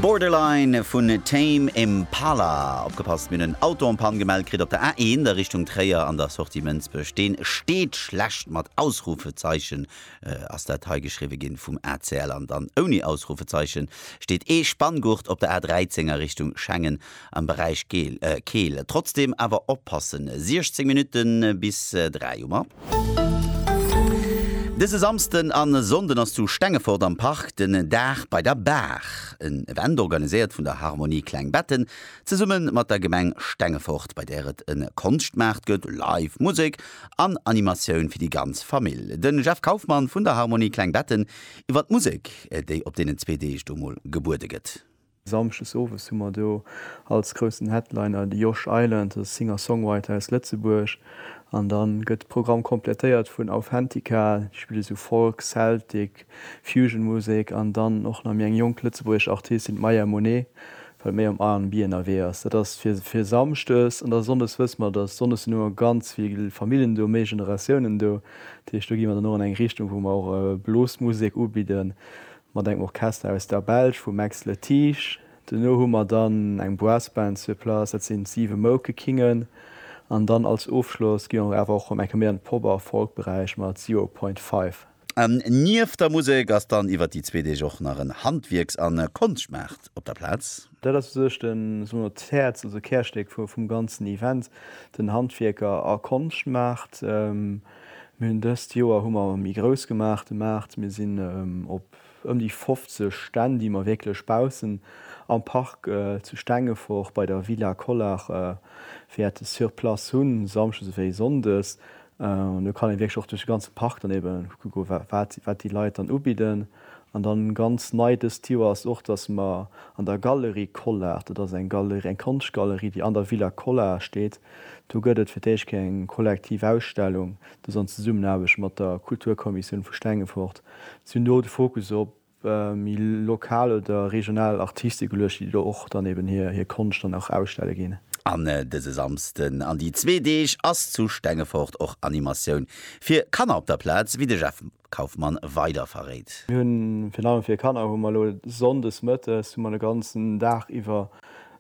Borderline vun Tame Impala. Opgepasst, mir hunn en Auto en panne gemellt kritt op der A1 a Richtung Tréier an der Sortie Mënsbech. Deen steet schlecht mat Ausrufezeichen ass dat hei geschriwwe ginn vum ACL an dann ouni Ausrufezeichen steet ee Spanngurt op der A13 a Richtung Schengen am Beräich Keel. Trotzdeem awer oppassen, 16 Minutte bis 3 hu mer. Dëse Samsden a Sonnden ass zu Stengefort am Park den Dag bei der Baach, en Event organiséiert vun der Harmonie Klengbetten zesumme mat der Gemeng Stengefort, bei där et e Konschtmaart gëtt, Live Musek an Animatioun fir déi ganz Famill. Den Jeff Kaufmann vun der Harmonie Klengbetten iwwer d'Musek, déi op deenen zwee Deeg do mol gebuede gëtt. Samschdes owes hu mer do als groussen Headliner de Josh Island, e Singer-Songwriter aus Lëtzebuerg. An dann gëtt de Programm komplettéiert vun Authentica, déi spille sou Folk, Celtic, Fusion-Musek. An dann och nach méi eng jonk lëtzebuergesch Artistin, d'Maya Monet, wat méi am R&B ënnerwee ass. Dat ass fir, fir Samschdes. An da Sonndes wësse mer, dass, Sonndes sinn ëmmer ganz vill Famillen do, méi Generatiounen do. Dat heescht, do gi mer dann och an eng Richtung, wou mer och Blues-Musek ubidden. mat engem Orchester aus der Belsch vum Max Le Tiche, duerno hu mer dann eng Brassband sur place, dat sinn d'Siwe Moukekingen, an dann als Ofschloss gi mer awer och ëm eng Kéier méi an de Pop a Folkberäich mat Zero Point Five. Nieft der Musek ass dann iwwert déi zwee Deeg och nach en Handwierks a Konschtmaart op der Plaz. Dat ass u sech de, soe mer, d'Häerz, also d'Kärstéck vum ganzen Event, den Handwierker a Konschtmaart. Mir hunn dëst Joer hu mer méi grouss gemaach de Maart. Mir sinn op ëm déi 50 Stänn, déi mer wierklech baussen am Park zu Stengefort bei der Villa Collart wäerte sur place hunn, samschdes ewéi sonndes. An do kann ee wierklech och duerch de ganze Park dann ebe kucke wat déi Leit dann ubidden. An da ganz nei dëst Joer ass och, dass mer an der Galerie Collart, dat ass eng Galerie, eng Konschtgalerie, déi an der Villa Collart steet, Do gëtt et fir d'éischt Kéier eng kollektiv Ausstellung, dës an Zesummenaarbecht mat der Kulturkommissioun vu Stengefort. Si hunn do de Fokus op méi lokal oder regional Artiste geluecht, déi do och dann eben hir Konscht dann och ausstelle ginn. An dëse Samsden an déi zwee Deeg ass zu Stengefort och Animatioun fir Kanner op der Plaz, wéi de Jeff Kauffmann weider verréit. Mir hunn virun allem fir Kanner hu mer elo Sonndes Mëttes hu mer de ganzen Dag iwwer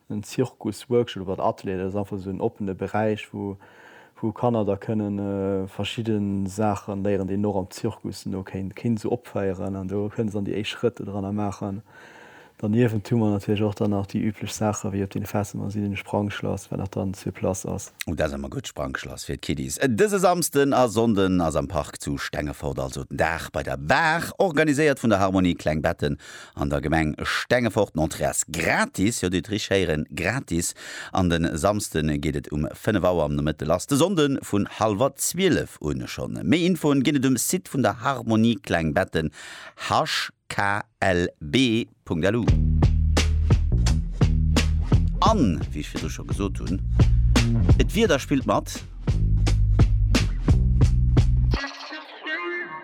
en Zirkus Workshop oder Atelier. Dat ass einfach esou en oppene Beräich wou wou Kanner da kënne verschidde Saache léieren déi een och am Zirkus no kéint kéint esou opféieren an do kënne se dann déi éischt Schrëtter dranner maachen. Derniewent hu mer natierlech och dann nach déi üblech Saachen, wéi op den Festen an si den Sprangschlass, wat nach dann sur place ass. Oh, dat ass ëmmer gutt, Sprangschlass fir d'Kiddies. Dëse Samsden a Sonnden ass am Park zu Stengefort also den Dag bei der Baach. Organiséiert vun der Harmonie Kleng Betten an der Gemeng Stengefort. D'Entrée ass gratis, jo, dir hutt richteg héieren, gratis. An den Samsden geet et um 5 Auer am Nomëtte lass, de Sonnden vun halwer 12 un. Schonn méi Infoen ginn et um Site vun der Harmonie Kleng Betten, harch. klb.lu. An, wéi ech virdru scho gesot hunn, et Wieder spillt mat!